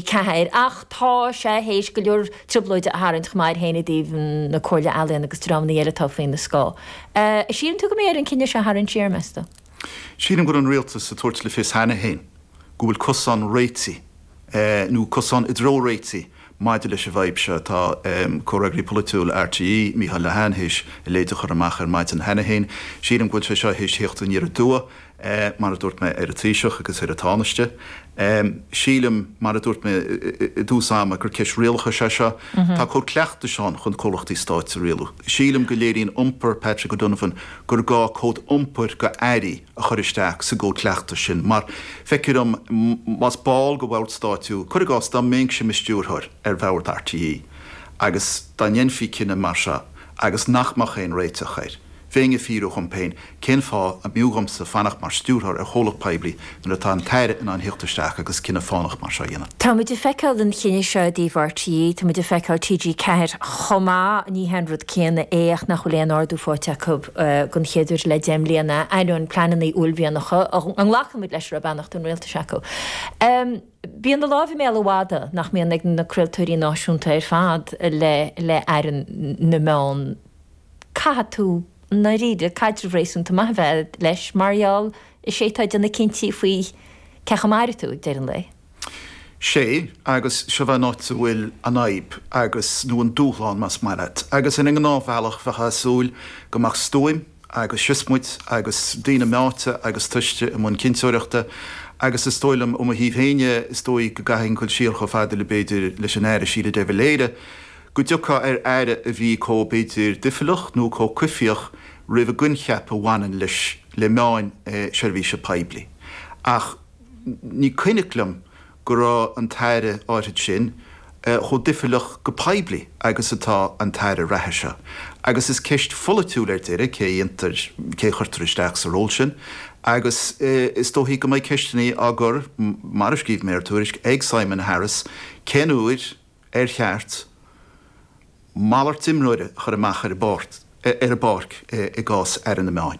T4 ach tá sé th'éis go leor trioblóide a tharraingt chomh maith air féin i dtaobh na Comhairle Ealaíon agus dreamanna eile atá faoina scáth. Síleann tú go mbeidh air an cinneadh seo a tharraingt siar, meas tú? Sílim go raibh an Rialtas ag tabhairt le fios cheana féin go bhfuil cosán réitigh nó cosán i dtreo réitigh maidir leis an bhfadhb seo. Tá Comhfhreagraí Polaitiúil RTÉ, Micheál Lehane, th'éis a leithéid a chur amach ar maidin cheana féin. Sílim go bhfuil sé seo th'éis theacht aniar aduaidh. Mar a dúirt mé ar an Taoiseach agus ar an Tánaiste, sílim, mar a dúirt mé i dtús ama, gur ceist rialachais é seo. Tá cód cleachtais ann chun comhlachtaí stáit a rialú. Sílim go léiríonn iompar Patrick O'Donovan gur gá cód iompair go Airí a chur isteach sa gcód cleachtais sin mar, feictear dom, más ball de bhord stáit thú, cuir i gcás, dá mbeinnse i mo stiúrthóir ar bhord RTÉ agus dá ndéanfaí cinneadh mar seo agus nach mbeadh aon réiteach air, bheinn ag fiafraí dhom féin Cén fáth a mb'fhiú dhomsa fanacht mar Stiúrthóir ar chomhlacht poiblí nuair atá an tAire in ann theacht isteach agus cinneadh fánach mar seo a dhéanamh? Táimid ag feiceáil an chinnidh seo i dtaobh RTÉ, táimid ag feiceáil TG 4 chomh maith, ní hé an rud céanna é ach nach bhfuil aon ardú faighte acu den chéad uair le deich mbliana, ainneoin pleananna uaillmhianacha a nglacaimid leis a raibh beannacht an Rialtais acu. Bíonn an láimh i mbéal an mhadaidh nach mbíonn ag na craoltóirí náisiúnta ar fad le Aire na Meán. caithfidh tú i ndáiríre caidreamh réasúnta maith a bheith agat leis mar gheall is é atá ag déanamh cinntí faoi cé acu a mairfidh tú ag deireadh an lae. Sé, agus seo an áit a bhfuil an fhadhb agus, nó an dúshlán más maith leat. Agus ar an ngnáthbhealach bheifeá ag súil go mbeadh stuaim agus siosmaid agus daoine meáite agus tomhaiste i mbun cinnteoireachta agus is dóigh liom, ó mo thaobh féin dhe, is dóigh go gcaithfinn dul siar chomh fada le, b'fhéidir, leis an Aire Síle De Valera. go dtiocfá ar Aire a bhí chomh, b'fhéidir, doicheallach nó chomh coimhthíoch roimh an gcoincheap a bhaineann leis, le meáin seirbhíse poiblí. Ach ní cuimhneach liom go raibh an tAire áithrid sin chomh doicheallach go poiblí agus atá an tAire reatha seo. Agus is ceist pholaitiúil ar deireadh cé a dhéantar, cé a chuirtear isteach sa ról sin. Agus is dóichí go mbeidh ceisteannaí á gcur, mar a scríobh mé ar Tuairisc, ag Simon Harris cén uair, ar cheart malairt imreora a chur amach ar an bpáirc i gcás Aire na Meán?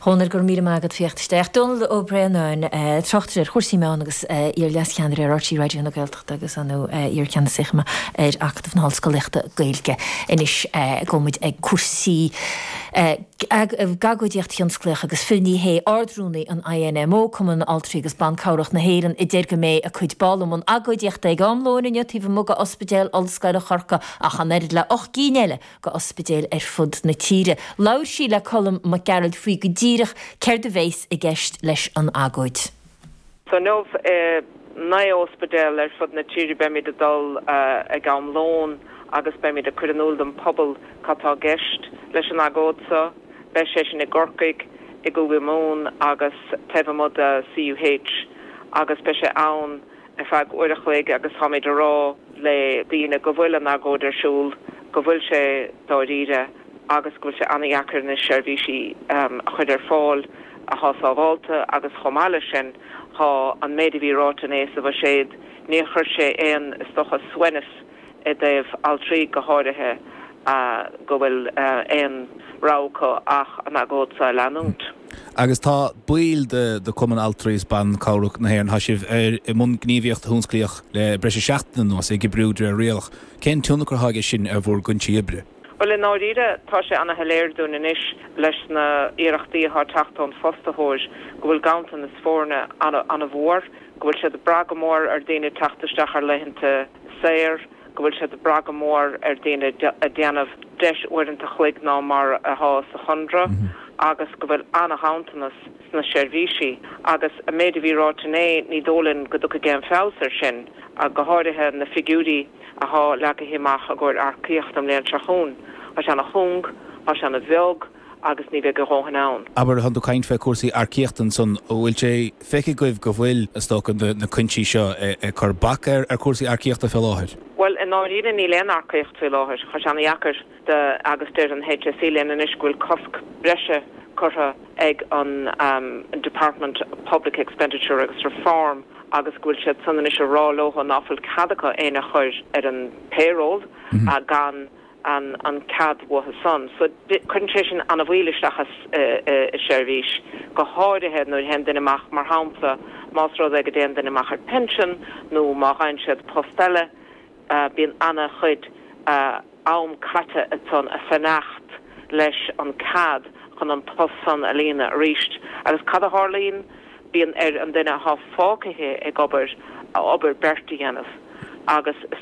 Dhónaill, Go raibh míle maith agat theacht isteach. Dónall Ó Braonáin, Tráchtaire ar chúrsaí meán agus iar leascheannaire ar RTÉ Raidió na Gaeltachta agus iarcheannasaí chomh maith ar Acadamh na hOllscolaíochta Gaeilge. Anois gabhfaidh muid ag cúrsaí. ag agóidíocht thionsclaíoch agus Phil Ní Sheaghdha Ard-Rúnaí an INMO, Cumann Altraí agus Ban Cabhrach na hÉireann, a deir go mbeidh a cuid ball i mbun agóidíochta ag am lóin inniu taobh amuigh go Ospidéal Ollscoile Chorcaí ach an oiread le ocht gcinn eile go ospidéil ar fud na tíre. Labhair sí le Colm Mac Gearailt faoi go díreach céard a bheas i gceist leis an agóid. So inniu i naoi óspidéal ar fud na tíre beimíd ag dul ag am lóin agus beimíd ag cur in iúl don pobal cad tá i gceist leis an agóid so. Beidh sé sin i gCorcaigh, i gCúige Mumhan agus taobh amuigh de CUH agus beidh sé ann ar feadh uair a chloig agus táimíd a rá le daoine go bhfuil an agóid ar siúl, go bhfuil sé dáiríre agus go bhfuil sé an-dheacair anois seirbhísí a chuir ar fáil athá sábhálta agus chomh maith le sin thá an méid a bhí ráite inné sa bhuiséad níor chuir sé aon is dócha suaimhneas i dtaobh altraí go háirithe, go bhfuil aon rogha acu ach an agóid seo a leanúint. Agus tá baill de Chumann Altraí is Ban Cabhrach na hÉireann, tá sibh i mbun gníomhaíocht thionsclaíoch le breis is seachtain anuas, ag oibriú de réir rialach. Cén tionchar atá aige sin ar bhur gcuinsí oibre? Bhuel, i ndáiríre, tá sé ana shoiléir dúinn anois leis na h-iarrachtaí athá teacht ón fostaitheoir go bhfuil ganntanas foirne ana, ana mhór, go bhfuil siad ag brath go mór ar daoine teacht isteach ar laethanta saor, go bhfuil siad ag brath go mór ar daoine a déanamh breis uaireannta chloig ná mar athá sa chonradh agus go bhfuil ana ghanntanas sna seirbhísí. Agus an méid a bhí ráite inné, ní dóigh linn go dtiocfaidh aon feabhas ar sin, go h-áirithe na figiúirí, a thá leagaithe amach i gcóir earcaíocht an bhliain seo chugainn. Thá sé ana chúng, thá sé ana bheag agus ní bheidh a dhóthain ann. Abair, tánn tú ag caint fé cúrsaí earcaíochta ansan, an bhfuil sé feicthe agaibh go bhfuil, is dócha, na cuinsí seo ag cur bac ar cúrsaí earcaíochta fé láthair? Bhuel, i ndáiríre níl aon earcaíocht fé láthair. Thá sé ana dheacair. agus deir an HSE linn anois go bhfuil cosc breise curtha ag an Department of Public Expenditure agus Reform agus go bhfuil siad san anois a rá leo ná fuil cead acu éinne a chur ar an payroll gan an cead uathu san. So cuireann sé sin an-mhoill isteach i seirbhís, go háirithe nuair a théann duine amach, mar shampla más rud é go dtéann duine amach ar pension nó má gheibheann siad post eile bíonn an-chuid am caite ansan a fanacht leis an cead chun an post san a líonadh arís agus cad a tharlaíonn? Bíonn ar an duine athá fágaithe ag obair obair beirt a dhéanamh agus is.